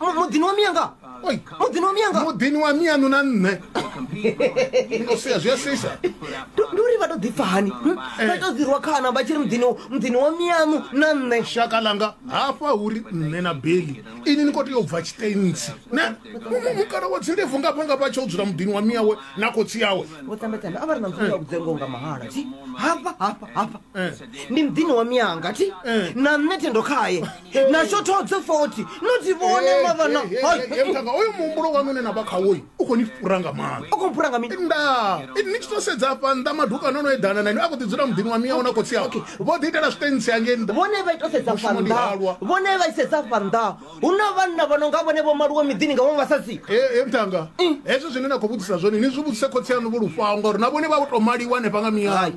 Mu- muḓini wa miya nga Oi. muḓini wa miya nga muḓini wa mianu na nṋe Ino sia zwi a sisa Ndi- ndi uri vha to ḓipfa hani hm? vha to ḓirwa khana vha tshi ri muḓini muḓini wa miyaṋu na nṋe shaka langa hafha uri nṋe na beli ini ni khou tea u bva tshitentsi ne Mu- mu- mukala wa dzindebvu ngafha ngafha tsha u dzula muḓini wa miyawe na khotsi yawe vho tambetambe a vha ri na mfumo ya vhudzengo nga mahala thi hafha hafha hafha Eh. ndi muḓini wa miyanga thi Eh. na nṋe thendo khaye natsho thodze foti noti vhone mavana mutanga oyo muhumbulo wanu une na vha khawoyi u khou ni fhura nga maanḓa u khou fhura nga mini nda ni tshi to sedza afha nnḓa madukano ono eḓana na ine a khou ḓi dzula muḓini wa miyawo na khotsi yao vho ḓi itela zwiṱentsi hangei nnḓa vhone vha ito sedza fa nnḓa vhone vha isedza fa nnḓa hu na vhanna vha no nga vhone vho maluwe miḓini nga vhaṅwe vhasadzi e mutanga hezwo zwine na khou vhudzisa zwone ni zwi vhudzise khotsi yanu vho lufhaho ngauri na vhone vha u to maliwa hanefha nga miyayo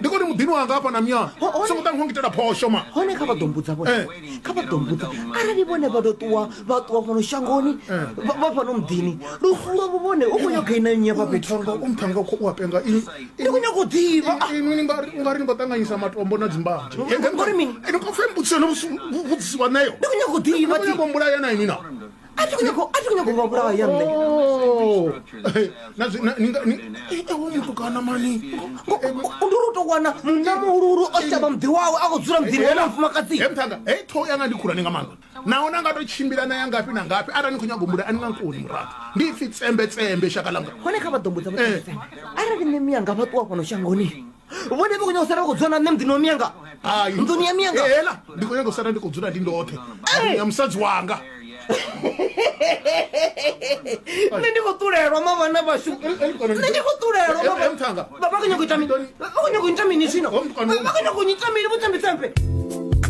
ndi koni muḓini wanga hafha na myana songo ṱa ngitela phosho ma hone kha vha ḓo mbudza vhone eh. kha vha ḓo mbudza arali vhone vha ḓo ṱuwa vha ṱuwa fhano shangoni eh. vha fhano muḓini lufu lwavho vhone u khou nyaga ina nnyi hafha fhethu umphanga khou u apenga ndi khou nyaga u ḓivha ah. inwi ungari ni khou ṱanganyisa matombo na dzimbanzhe ngori mini ene khou fhe mbudziso no vhudzisiwa nayo ndi khou nyaga u ḓivha ndi khou nyaga u mbulaya na inwi na a thi khou nyanga u- a thi khou nyanga u vha vhulaya nṋe Eh, na zwi- na- ni nga- ni- eh, eh, hoyu mutukana mani ndi uri u tou wana munna muhuluhulu o shavha muḓi wawe a khou dzula muḓini wa mufumakadzi he mthanga hei ṱhoho yanga ndi khulwane nga maanḓa naho na nga to tshimbila na ya ngafhi na ngafhi arali ni khou nyago mula a ni nga nkoni muraḓo ndi ipfi tsembetsembe shaka langa hone kha vha ḓombo dza Eh. vhae arali nṋe miyanga vha ṱuwa fhano shangoni vhone vha khou nyanga u sala vha khou dzula na nṋe muḓini wa miyanga nḓuni ya miyanga ela ndi khou nyanga u sala ndi khou dzula ndi ndoṱhe ya musadzi wanga nṋe ndi khou ṱulelwa mavhana vhashu nṋe ndi khou ṱulelwa vha khou nyanga u ita mini vha khou nyanga u ita mini zwino vha khou nyanga u ita mini vhuṱembetsembe